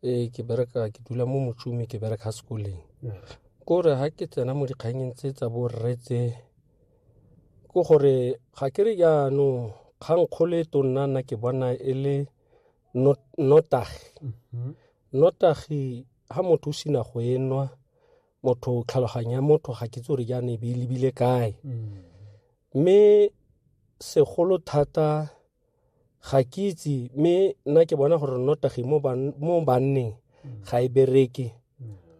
ee ke bereka ke dula mo motsumi ke bereka sekoleng ko re ga ke tsena mo dikganyeng tse tsa borre tse ke gore ga ke re jaanong kgang kgolo e tonna nna ke bona e le notagi notagi ga motho o sena go e nwa motho tlhaloganya motho ga ke tse re jaana e be e lebile kae mme segolo thata ga ke itse mme nna ke bona gore nnotagi mo banneng ga e bereke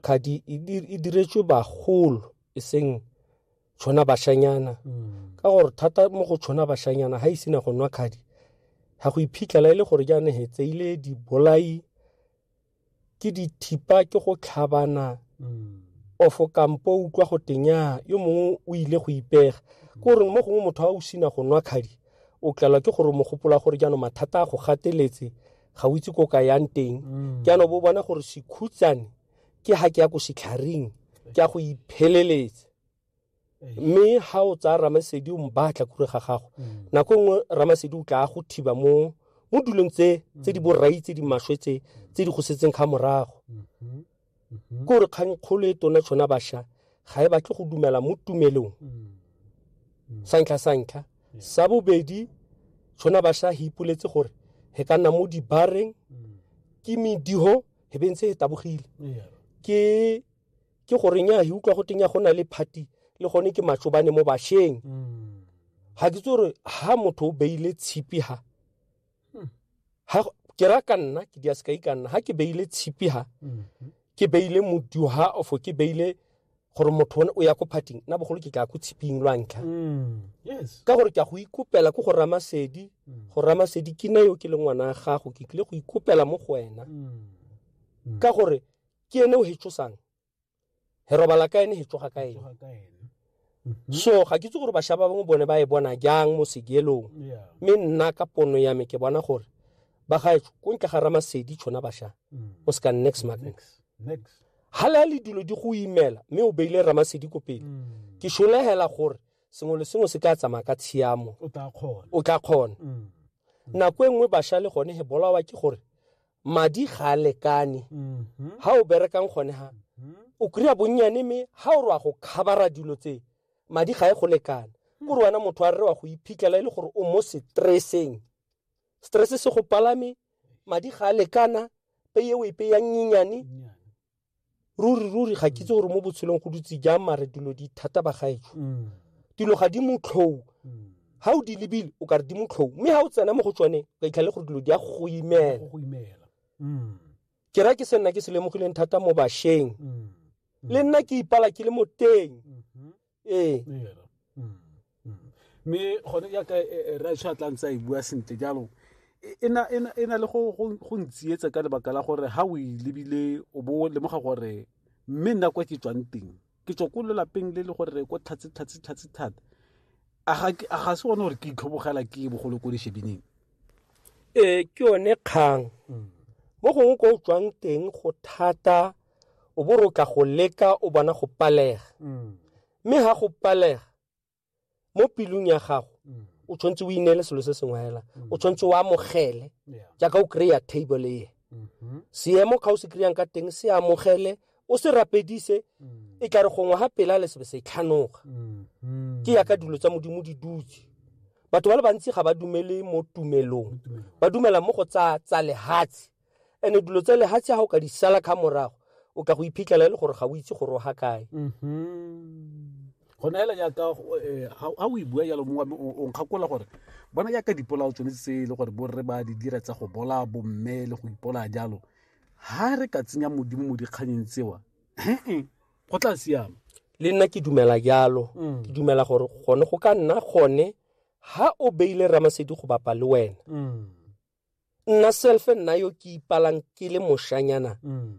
kgadi e, e diretswe bagolo e seng tshwana bashanyana mm. ka gore thata mo go tshwana bashanyana ga e sena go nwa kgadi ga go iphitlhela e le gore jaane he tseile dibolai ke dithipa ke go tlhabana mm. ofo kampo o utlwa go tenya yo mongwe o ile go ipega ke gore mo gongwe motho a o sina go nwa kgadi o tlelwa ke gore mogopola gore jaanong mathata a go gateletse ga o itse ko ka yang teng mm. ke ano bo bona gore sekhutsane ke ha ke ya ko setlharing ke ya go ipheleletsa mme ha o tsaya ramasedi o mbatla kure ga gago mm. nako nngwe ramasedi o tla go thiba mo mo dulong tse tse di mm. borai tse di maswe tse tse di go setseng ga morago mm-hmm. mm-hmm. kore kgang kgolo e tona tshwana basha ga e batle go dumela mo tumelong mm. santlha santlha sa bobedi tshwana basha he ipoletse gore he ka nna mo dibareng ke mediho he bentse e tabogile ke ke gore nya he utlwa go tenya go na le party le gone ke matsobane mo basheng ga ke tse gore ha motho o beile tshipi ha ha ke ra ka nna ke dia sekai ka nna ha ke beile tshipi ha ke beile modio ha ofo ke beile gore motho one o ya ko parting nna bogolo ke tla ko tshiping lwa ntlha yes ka gore ke a go ikopela ko go ramasedi go ramasedi ke nna yo ke le ngwana ya gago ke tlile go ikopela mo go wena ka gore ke ene o hetsosang he robala ka ene he tsoga ka ene mhm. so ga ke itse gore bašwa ba bangwe bone ba e bona jang mo segelong mme nna ka pono ya me ke bona gore ba gaetso ko ntle ga ramasedi tshona bašwa mm. o se ka next magnet ga le a le dilo di go imela mme o beile ramasedi ko pele mm. ke solegela gore sengwe le sengwe se ka tsamaya ka tshiamo o tla kgona mm. nako e nngwe bašwa le gone he bolawa ke gore madi ga a lekane ga mm-hmm. o berekang gone ha mm-hmm. o kry-a bonnyane mme ga o re wa go khabara dilo tse madi ga e go lekana hmm. kore wena motho a re wa go iphitlhela e le gore o mo stresseng stress se go palame madi ga a lekana peye o e peyang nyenyane ruri ruri ga ke itse gore mo botshelong go dutse jang mare dilo di thata ba gaetsho mm. dilo ga di motlhou mm. ga o di lebile o ka re di motlhou mme ga o tsena mo go tsone o ka itlhale gore dilo di ya go imela mm. ke ra ke se nna ke se lemogileng thata mo bašweng le nna ke ipala ke le mo teng mm-hmm. ee Era. Mm, mm. mme gone jaaka ratsho a tlang sa e bua sentle jalo e- e na- e na- e na le go- go go ntsietsa ka lebaka la gore ga o e lebile o bo o lemoga gore mme nna kwa ke tswang teng ke tswa ko lelapeng le le gore ko tlhatse tlhatse tlhatse thata a ga ke- a ga se one gore ke itlhobogela ke bogolo ko leshebining ee ke yone kgang mo gongwe ko o tswang teng go thata o bo rotla go leka o bona go palega mm. mme ga go palega mo pelong ya gago mm. o tshwanetse o ineele selo se sengwe fela mm. o tshwanetse o amogele jaaka o kry-a table eye mm-hmm. seemo ga o se kry-ang ka teng se amogele o se rapedise e tla re gongwe ga pela le sebe se tlhanoga mm-hmm. ke yaka dilo tsa modimo di dutse batho ba le bantsi ga ba dumele mo tumelong ba dumela mo go tsa tsa lehatshe and dilo tsa lehatshe ga o ka di sala kga morago o ka go iphitlhela e le gore ga o itse gore o ga kae mm-hmm. go neela jaaka ga eh, o e bua jalo mongwe o nkgakola gore bona jaaka dipolao tsone tse e le gore borre ba di dira tsa go bola bomme le go ipola jalo ha re ka tsenya modimo mo dikganyeng tsewa go tla siama le nna ke dumela jalo mm. ke dumela gore gone go ka nna gone ha o beile ramasedi go bapa le wena mm. nna selfe nna yo ke ipalang ke le moshanyana mm.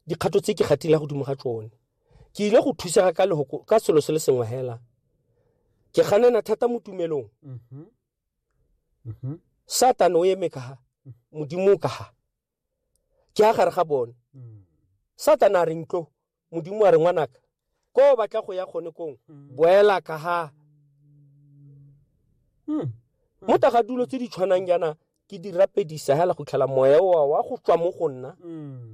dikgato tse ke gatile godimo ga tsone ke ile go thusega ka lehoko ka selo se le sengwe hela ke ganena thata mo tumelong mm-hmm. Mm-hmm. satane o eme kaga modimo o kaga ke a gare ga bone mm. satane a re ntlo modimo a re ngwanaka ko o batla go ya gone kong mm. boela ka ga mm. mo taga dulo tse di tshwanang jaana ke di rapedisa hela go tlhela moya oa wa go tswa mo go nna mm.